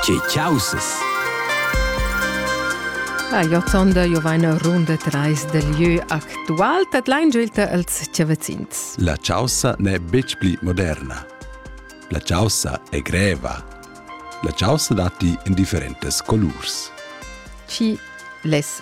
Che causes? Ah, jo sonda jo vaina runda trais del lieu actual, dat lain giulta als chavazins. La chaussa n'è betg pli moderna. La chaussa è greva. La chaussa datti in differentes colurs. Chi les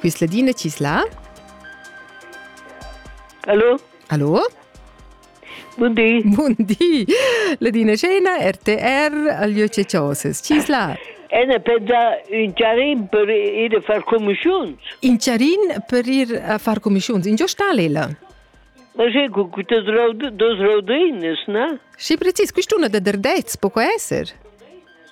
Quis ladina chi's la? Hallo. Hallo. Bun di. Bun di. Ladina Scena, RTR, Alieu Cecioses. Chi's la? Ene per da un charin per ir a far comischiuns. In charin per ir a far comischiuns. In giostalella. Ma sei con queste dos rodines, no? Sì, precis, quest'una da derdez, poco esser.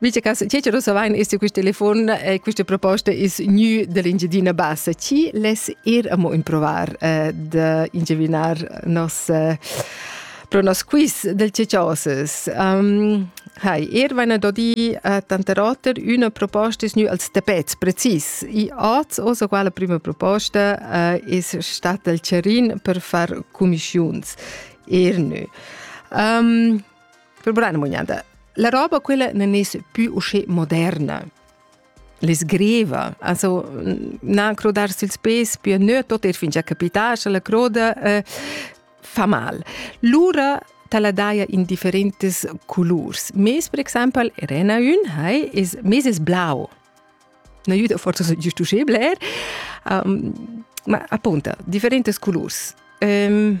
Invece che ci lo savain este quist telefon e queste proposte is new dell'Ingiadina Bassa. Ci les ir amo improvar eh, de ingevinar nos eh, pro nos quiz del Cecioses. Um, Hai, er vaina do di a tante roter una proposta is nu als tapets precis. I oz osa quala prima proposta uh, is stat del Cerin per far comischiuns. Er nu. Um, Per brana mugnada. La roba quella non es più usce moderna. Le sgreva, also na crodar sil spes più nö tot er fingia capitar, sche la croda eh, fa mal. Lura tala daia in differentes colors. Mes, per exemple, rena un, hai, is, mes es blau. Na juda forse giusto usce bler. Um, ma appunto, differentes colors. Um,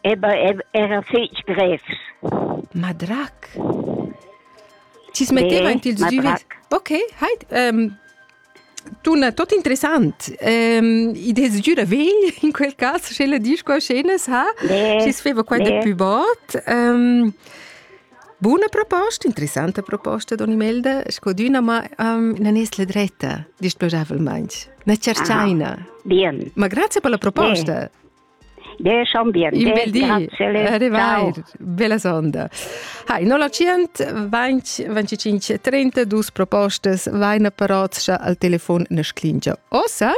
era fetg grevs. Madrac. Ci smetteva anche il duvet. Okay, hai um, tuna tot interessant. Um, I des giura vegl in quel caso sche la dis qua scenas ha. Ci sveva qua da più bot. Um, Buona proposta, interessante proposta, Don Imelda. Scodina, ma um, non è la dretta, displacevolmente. Ne cercaina. Ah, bien. Ma grazie per la proposta. Bien. Desch ambient. Il bel di. Arrivair. Bella sonda. Hai, 0925 propostas vaina parotscha al telefon nasclingia. Ossa?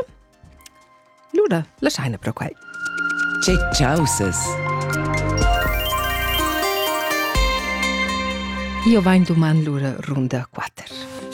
Luna, lasciaina pro quai. Cic, ciao ses. Io vain duman Luna runda 4.